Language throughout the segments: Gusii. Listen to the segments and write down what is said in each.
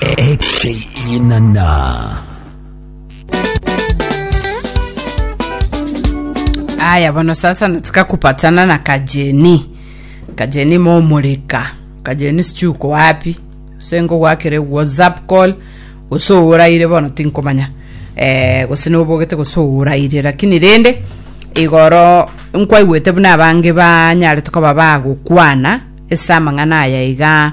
Ekeinana. Aya bono sasa nataka kupatana na kajeni kajeni momurika kajeni sichi uko wapi sengo gwakire whatsapp call gose ouraire bono tinkomanya eh, gose nobogete gose ouraire lakini rende igoro nkwaigwete buna abange banyare tokoba bagokwana ese amang'ana aya iga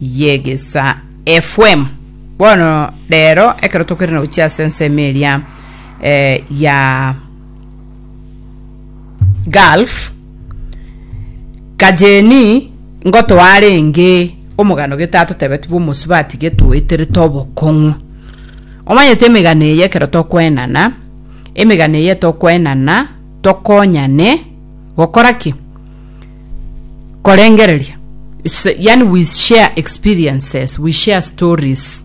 y'egesaa FM. Bono rero ekero tokerene gochia ase ensemo eria eh, ya Gulf kajeni ngotoarenge omogano getato tebeti bw'omosubati getoeterete obokong'u omanyete emegano eye ekero tokwenana emegano eye tokwenana tokonyane gokora ki korengereria It's- yani we share experiences we share stories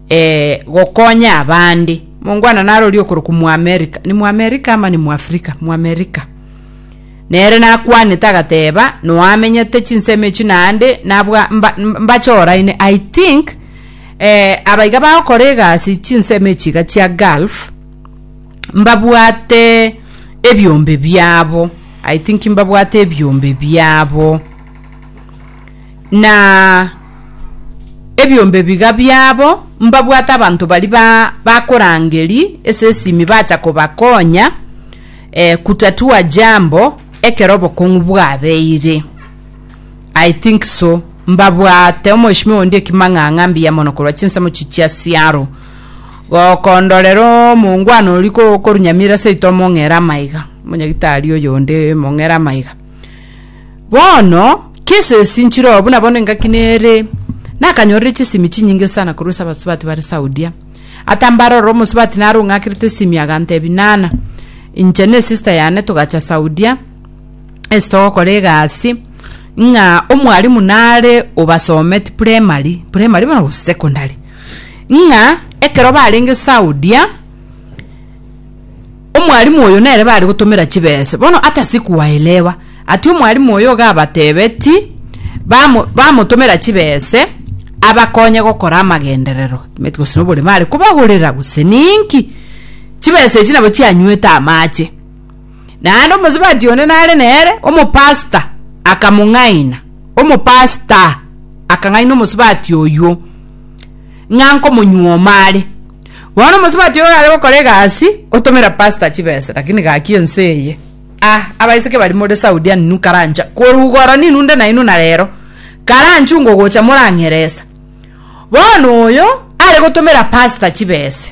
eh, gokonya abande mongwana narori okoroku muamerica ni muamerica ama ni muafrika muamerica nere nakwanete agateba noamenyete chinsemo echi naende nabwa mba- mbache oraine i think eh, abaiga bagokora egasi chinsemo echi iga chia gulf mbabwate ebiombe biabo I think mbabwate ebiombe biabo, na ebiombe biga biabo mbabwate abanto bari ba bakorangeri ase esimi bacha kobakonya eh, kutatua jambo ekero obokong'u bwabeire. I think so, mbabwate omoeshimiwa onde ekimang'ang'a mbuya mono korwa chinsemo echi chia siaro. Gokondorera omongwana oria kokorunyamire seito omong'ere amaiga, omonyagitari oyonde omong'ere amaiga. Bono, kese esi nchirooo buna bono engaki nere, nakanyorire chisimi chinyinge sana korwa ase abasubati bare Saudia. Atambare ororo omosubati naro ong'akerete esimi agantebi nana, inche ne sister yane togacha Saudia, ase togokora egasi, ng'a omwarimu nare obasometi primary, primary bono gose secondary. ng'a ekero barenge Saudia, omwalimu oyo nere bare gotomera chibese. Bono hata sikuwaelewa. Atia omwalimu oyo iga abatebeti, bamo bamotomera chibese, abakonye gokora amagenderero, timanyeti gose noborema are kobagorera gose ninki. Chibese echi nabo chianywete amache. Naende omosubati onde nare nere, omopasita, akamong'aina. Omopasita akang'aina omosubati oyio ng'a nkomonyuoma are. Bono omosubati oyo are gokora egasi, otomera pasita chibesa, lakini gaki ense eye. Ah, abaiseke baria more Saudi ani inwe karancha korugora ninwe nde nainwe na rero, karanchunga ogocha morang'eresa. Bono oyo, are gotomera pasita chibesa.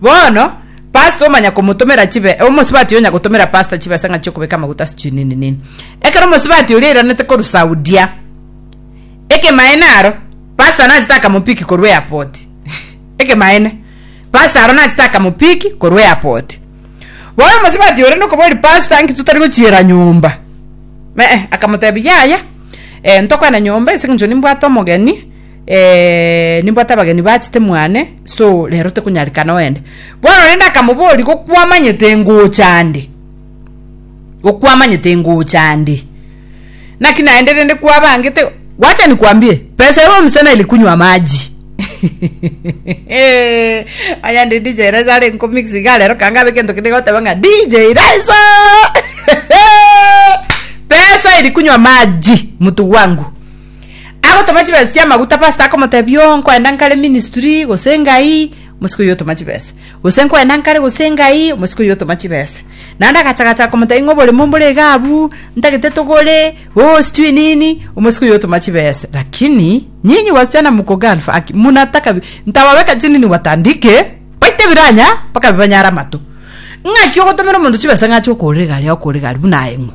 Bono pastor omanya komotomera chibe omosibati onya gotomera pastor chibesa ng'a chiokobeka amaguta sijui nini nini ekero omosibati oria airanete korusaudia ekemaene aro pastor nachete akamopiki korwa airport ekemaene pastor aro nachete akamopiki korwa airport bono omosibati oria nokoboria pastor nki totari gochiera nyomba me eh akamotebia yaya eh ntokwana nyomba ase eng'encho nimbwate omogeni Eeh, nimbwate abageni bachete mwane, so rero tekonyarikana oende. Bono rende akamoboria, Gokwamanyete ngocha ande? Gokwamanyete ngocha ande? Naki naende rende kwabangete, wacha nikwambie, pesa ere omosana eri kunywa amaji. Eeh, onye ande DJ Raiso are nkomix iga rero kanga abe egento kende goteba ng'a DJ Raiso! Pesa eri kunywa amaji, mtu wangu. agotoma chibesa chi'amaguta pastor akomotebia oo nkoenda nkare ministry gose engai omosika oyio otoma chibesa gose nkoenda nkare gose engai omosika oyio otoma chibesa naende agacha gacha komotebia ng'a oboremo mbore iga abwo ntagete togore oo sijui nini omosika oyio otoma chibesa lakini nyinyi wasichana mko gulf aki munataka bi- nitawaweka chini niwatandike baite biranya mpaka bibanyare amato ng'aki ogotomera omonto chibesa ng'a ache okoorera egari agokoorera egari buna aye ng'o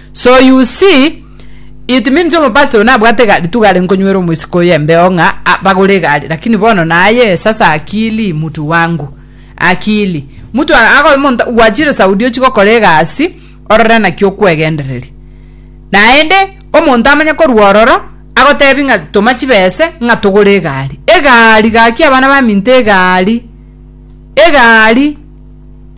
So you see, it means omopastor oyo nabwate egari tu gare nkonywera omosiko oyo embeo ng'a a- bagore egari lakini bono naye sasa akili mutu wangu akili mutu a- ago monta gwachire saudi ochi gokora egasi orore naki okwegendereria naende omonto amanye korwa ororo agotebi ng'a toma chibese ng'a togore egari egari gaki abana baminto egari egari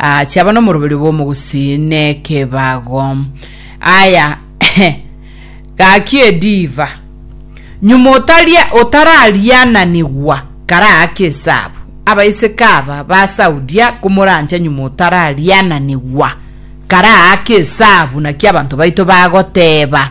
Aa, chiaba nomoroberio bw'omogusii nekebago. Aya, gaki ediva. Nyuma otaria otarariananigwa karaake esabu. Abaiseke aba basaudia komorancha nyuma otarariananigwa karaake esabu naki abanto baito bagoteba.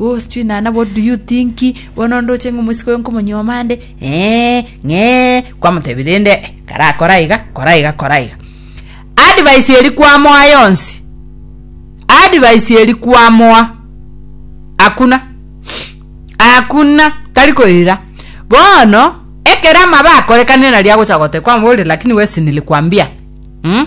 Oh, sijui nana what do you think bono onde oche ng'a omosike oye nkomonyuoma ande ee ng'ee kwamotebire rende eh, karakore aiga kora aiga kora aiga advice eri kwamoa yonsi advice eri kwamoa hakuna hakuna tari koira bono ekero amabe akorekane nari agocha gote kwamobori lakini wesi nilikuambia mm?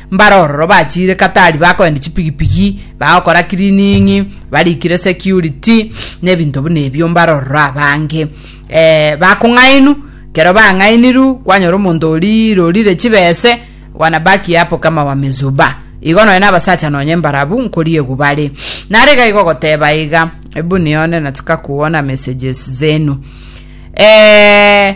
Mbare ororo bachiire katari bakoenda chipigipigi, bagokora cleaning, barikire security, na ebinto buna ebio mbare ororo abange. Eh, bakong'ainu, kero bang'ainiru kwanyora omonto oria rorire chibese, wanabaki hapo kama wamezuba. Igo nonya nabasacha nonya embarabu nkoriegwa bare. Nare iga igo goteba iga, ebu nione nataka kuona messages zenu. Eh,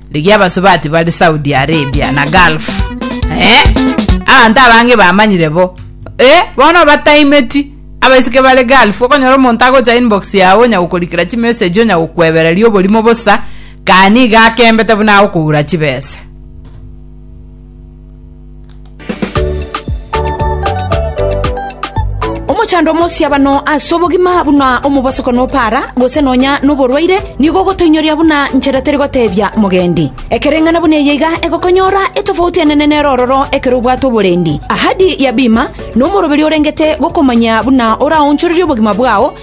Rigia abasubati bare Saudi Arabia na Gulf. Eh, abanto abange bamanyire bo. Eh, bono bataimeti. Abaiseke bare Gulf, okonyora omonto agocha inbox yao onyagokorikera chimessage onyagokwebereria oborimo bosa, kani iga akembete buna agokoura chibesa. Omochando omosiabano ase obogima buna omobosoko nopara, gose nonya noborwaire, nigo ogotoinyoria buna nchera teri gotebia mogendi. Ekereng'ana buna eye iga egokonyora etofauti enene nere ororo ekero obwate oborendi. Ahadi ya bima nomoroberio orengete gokomanya buna oraonchorerie obogima bwao,